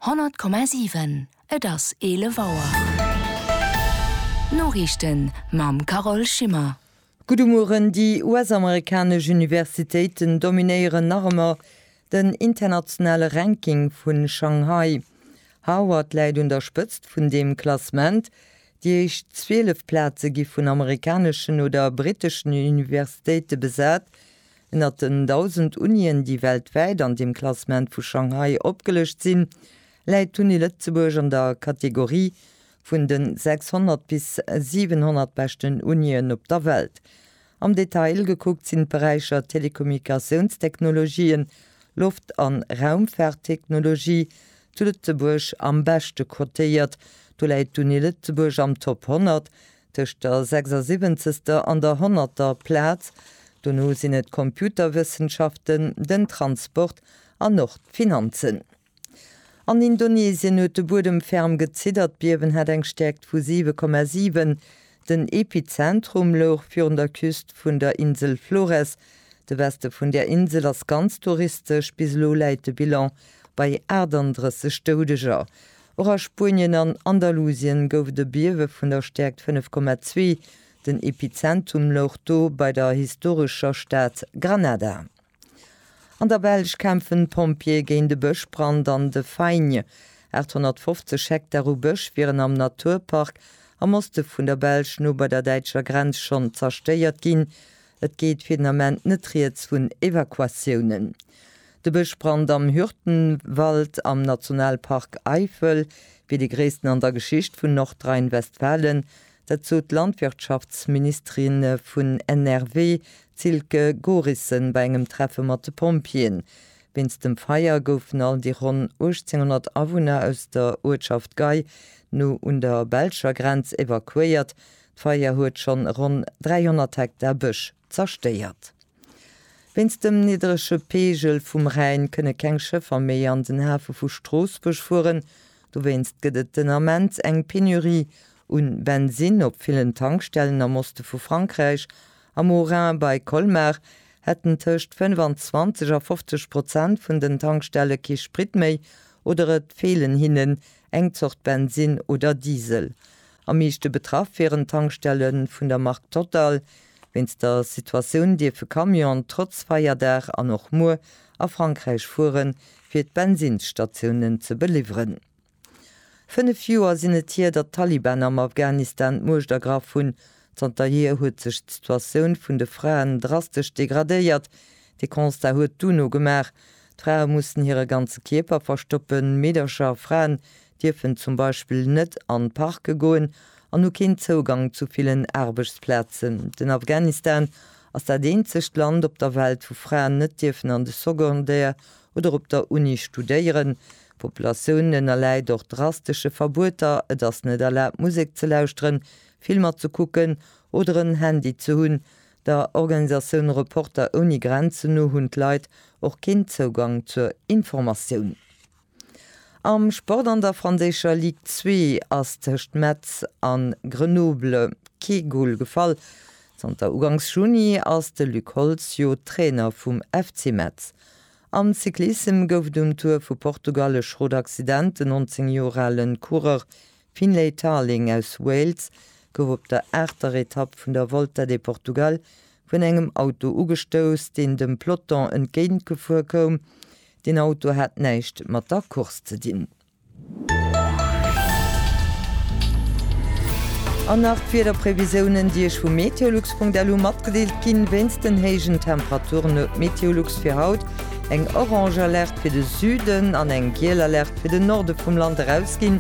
100,7 Et ass 11 Auer. D'Noriichten mam Carole Schimmer. Gudde Mueren, Déi US-amerikanesch Universitéiten dominéieren nach ëmmer den internationale Ranking vu Shanghai. Harvard läit un der Spëtzt vun deem Klassement, déi éischt 12 Plaze gi vun amerikaneschen oder briteschen Universitéite besat, Ënnert den 1.000 Unien, déi weltwäit an deem Klassement vu Shanghai opgelëscht sinn, läit d'Uni Lëtzebuerg an der Kategorie vun de 600 bis 700 beschten Unien op der Welt. Am Detail gekuckt sinn d'Beräicher Telekommunikatiounstechnologien, Loft a Raumfaarttechnologie zu Lëtzebuerg am beschte cotéiert. Do läit d'Uni Lëtzebuerg am Top 100, Tëscht der sechsersiwwenzegster an der honnerter Plaz, dono sinn et d'Computerwëssenschaften, den Transport an och d'Finanzen. An Indonesien huet de Buedem ferm geziddert, d'Biewen hat eng Stäerkt vu 7,7. Den Epizentrum louch virun der Küst vun der Insel Flores. De Weste vun där Insel ass ganz touristesch, bis elo läit de Bilan bei 38 Doudeger. Och a Spuenien an Andalusien gouf et e Biewe vun der Stäerkt 5,2. Den Epizentum louch do bei der historescher Stad Granada. An der Belsch kämpfen d'Pompjeeë géint e Bëschbrand an de Faigne. 850 Hektar u Bësch wieren am Naturpark am Oste vun der Belsch no bei der däitscher Grenz schonn zerstéiert ginn. Et geet fir den Ament net rieds vun Evakuatiounen. De Bëschbrand am Hürtgenwald am Nationalpark Eifel wier dee gréissten an der Geschicht vun Nordrhein-Westfalen. Dat sot d'Landwirtschaftsministerin vun NRW, d'Silke Gorissen, bei engem Treffe mat de Pompjeeën. Wéinst dem Feier goufen all déi ronn 1.800 Awunner aus der Uertschaft Gei, no un der belscher Grenz, evakuéiert. D'Feier huet schonn ronn 300 Hektar Bësch zerstéiert. Wéinst dem niddrege Peegel vum Rhäin kënne keng Schëffer méi an den Hafe vu Stroossbuerg fueren. Dowéinst gëtt et den Ament eng Penurie u Bensinn op villen Tankstellen am Oste vu Frankräich. Am Haut-Rhin bei Colmar hätten tëscht 25 a 50 Prozent vun den Tankstelle kee Sprit méi oder et feelen hinnen eng Zort Bensinn oder Diesel. Am meeschte betraff wieren d'Tankstelle vun der Mark Total. Wéinst der Situatioun dierfe Camionen trotz Feierdag an och muer a Frankräich fuere fir d'Bensinnsstatiounen ze beliwweren. Fënnef Joer sinn et hier, datt d'Taliban am Afghanistan d'Muecht ergraff hunn. Zanter hier huet sech d'Situatioun vun de Fraen drastesch degradéiert. Dee Constat huet d'UNO gemaach. D'Frae mussen hire ganze Kierper verstoppen, Meedercher a Fraen dierfen zum Beispill net an d'Parke goen an hu keen Zougang zu villen Aarbechtsplazen. Den Afghanistan ass dat eenzegt Land op der Welt, wou Fraen net dierfen an de Secondaire oder op der Uni studéieren. D'Populatioun ënnerläit och drastesche Verbueter, et ass net erlaabt Musek ze lauschteren, Filmer ze kucken oder en Handy ze hunn. Der Organisatioun Reporter ouni Grenzen no hunn d'Leit och keen Zougang zur Informatioun. Am Sport an der franséischer Ligue 2 ass tëscht Metz a Grenoble kee Gol gefall. Zanter ugangs Juni ass de Luc Holtz jo Trainer vum FC Metz. Am Cyclissem gouf et um Tour vu Portugal e Schrot-Accident. Den 19 Joer ale Coureur Finlay Tarling aus Wales gouf op der aachter Etapp vun der Volta de Portugal vun engem Auto ugestouss, deen dem Peloton entgéintgefuer koum. Deen Auto hat näischt mat der Course ze dinn. An nach d'Wiederprevisiounen, déi Iech vu meteolux.lu matgedeelt ginn. Wéinst den héijen Temperaturen huet d'Meteolux fir haut eng orange Alerte fir de Süden an eng giel Alerte fir den Norde vum Land erausginn.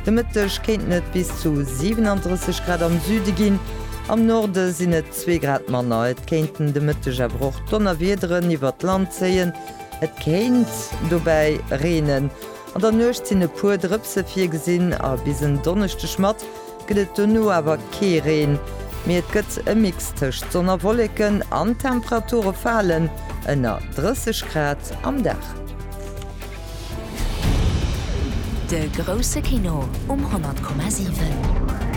De Mëtteg kéinten et bis zu 37 Grad am Süde ginn, am Norde sinn et zwee Grad manner. Et kéinten de Mëtteg awer och Donnerwiederen iwwert d'Land zéien. Et kéint dobäi reenen. An der Nuecht sinn e puer Drëpse virgesinn a bis en Donneschdeg mat gëtt et dono awer kee Reen, mee et gëtt e Mix tëscht Sonn a Wolleken an d'Temperature falen ënner 30 Grad am Dag. De grousse Kino um 100,7.